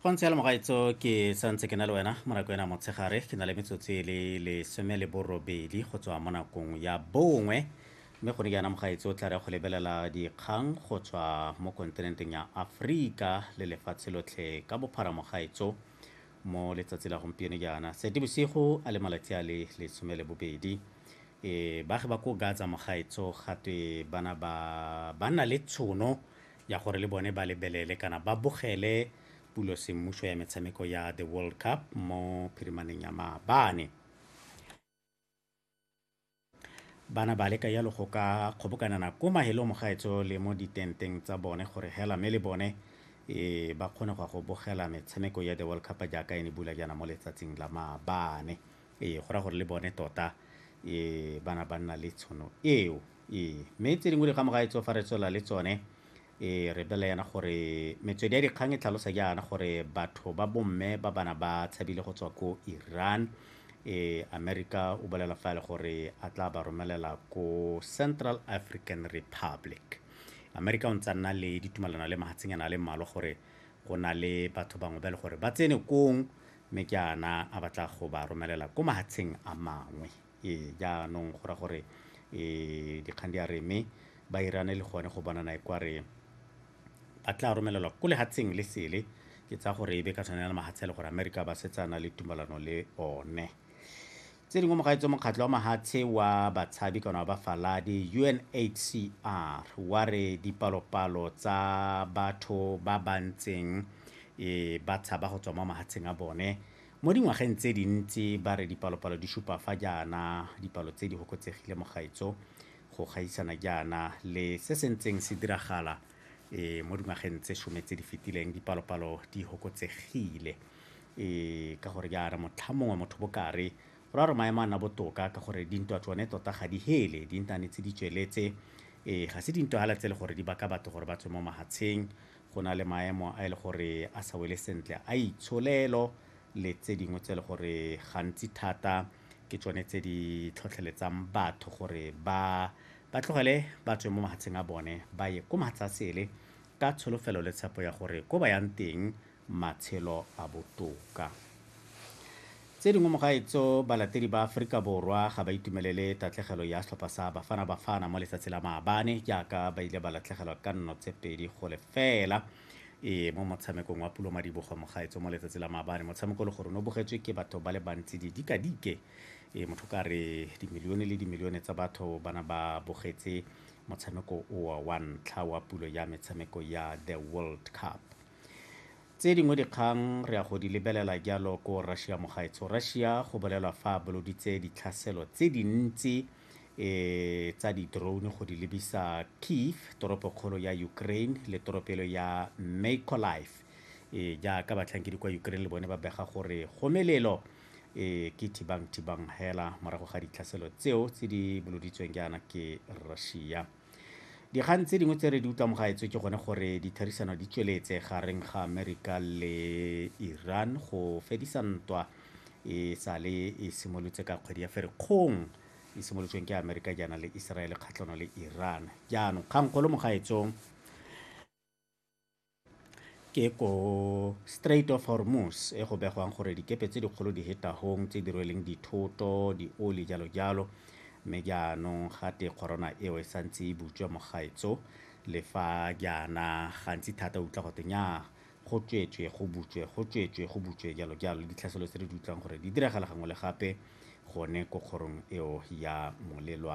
go ntse le mogaitso ke santse ke na le wena mo nako ena motshegare ke na le metsotso e le lesome le borobedi go tswa mo nakong ya bongwe mme gone jaana mogaitso o tla re go lebelela dikgang go tswa mo kontinenteng ya aforika le lefatshe lotlhe ka bophara mogaitso mo letsatsi la gompieno jaana sete bosigo a le malatsi a le lesome le bobedi e baagi ba ko gaza mogaitso gatwe bana ba ba na le tshono ya gore le bone ba lebelele kana ba bogele pulo semmušo ya metshameko ya the world cup mo phirimaneng ya maabane bana ba leka yalo go ka kgobokanana ko mahelo mogaetso le mo ditenteng tsa bone gore hela me le bone e ba kgone go go bogela metshameko ya the world cup jaaka e ne bula jaana mo letsatsing la maabane e go ra gore le bone tota e bana ba nna le tshono eo Ee, mme tse dingwe di ga mogaetso fa re tswelela le tsone e re bela yana gore metswedi ya dikgang e tlhalosa jaana gore batho ba bomme ba bana ba tshabile go tswa ko iran e america o bolela fa e le gore a tla ba romelela ko central african republic america o ntse nna le ditumalano le mahatshenyana a le mmalwa gore go na le batho bangwe ba e le gore ba tsene kong mme ke ana a batla go ba romelela ko mahatsheng a mangwe Ee, jaanong go ra gore um dikgang di a re mme ba irane le gone go bonana e kware ba tla romelelwa ko lehatsheng le sele ke tsa gore e be ka tshwanela mahatshe le gore amerika ba setsana le tumalano le one tse dingwe mogaetso mokgatlho wa mahatshe wa batshabi kana wa bafaladi unhcr wa re dipalopalo tsa batho ba ba ntseng e ba tshaba go tswa mo mahatsheng a bone Mo dingwageng tse dintsi ba re dipalopalo di supa fa jaana dipalo tse di hokotsegile mo gaetso go gaisana jaana le se se ntseng se diragala e, mo dingwageng tse some tse di fetileng dipalopalo di hokotsegile e, ka gore jaana motlha mongwe motho bokare go ra gore maemo a nna botoka ka gore dintwa tsone tota ga di hele di ntane tse di tsweletse e, ga se dintwa fela tse le gore di baka batho gore ba tswe mo mahatsheng go na le maemo a e le gore a sa wele sentle a itsholelo le tse dingwe tse e le gore gantsi thata ke tsone tse di tlhotlheletsang batho gore ba ba tlogele ba tswe mo mahatsheng a bone ba ye ko mahatsha sele ka tsholofelo le tshepo ya gore ko ba yang teng matshelo a botoka Tse dingwe mo gaetso, balatedi ba Aforika Borwa ga ba itumelele tatlegelo ya setlhopha sa Bafana Bafana mo letsatsi la maabane jaaka ba ile ba latlhegelwa ka nno tse pedi go lefela e mo motshamekong wa Pulo Madibogo mo gaetso mo letsatsi la maabane. Motshameko le gore o ne o bogetswe ke batho ba le bantsi didikadike e motho ka re dimilione le dimilione tsa batho ba na ba bogetse motshameko owa wa ntlha wa pulo ya metshameko ya The World Cup. Tse dingwe dikgang re ya go di lebelela jalo ko Russia mogaetsho. Russia go bolelwa fa a boloditse ditlhaselo tse dintsi e tsa di-drone go di lebisa Kiev, toropokgolo ya Ukraine le toropelo ya Mykolaiv. E jaaka batlhankedi kwa Ukraine le bone ba bega gore go melelo e ke thibang thibang hela morago ga ditlhaselo tseo tse di boloditsweng jaana ke Russia. dikgang tse dingwe tse re di utlwang gaetswe ke gone gore ditherisano di tsweletse gareng ga amerika le iran go fedisa ntwa e sale e simolotse ka kgwedi ya ferikgong e simolotsweng ke amerika jaana le israel kgatlhano le iran jaanong kgangkgolo mo gaetsong ke ko Strait of Hormuz e go begwang gore dikepe tse dikgolo di hetahong tse di rweleng dithoto dioli jalo jalo mme jaanong gate corona eo e santse e butswa mo gaetso le fa jaana gantsi thata o utlwa gote nya go tswetswe go butswe go tswetswe go butswe jalo jalo le ditlhaselo tse re di utlwang gore di diragala gangwe le gape gone ko kgorong eo ya molelwa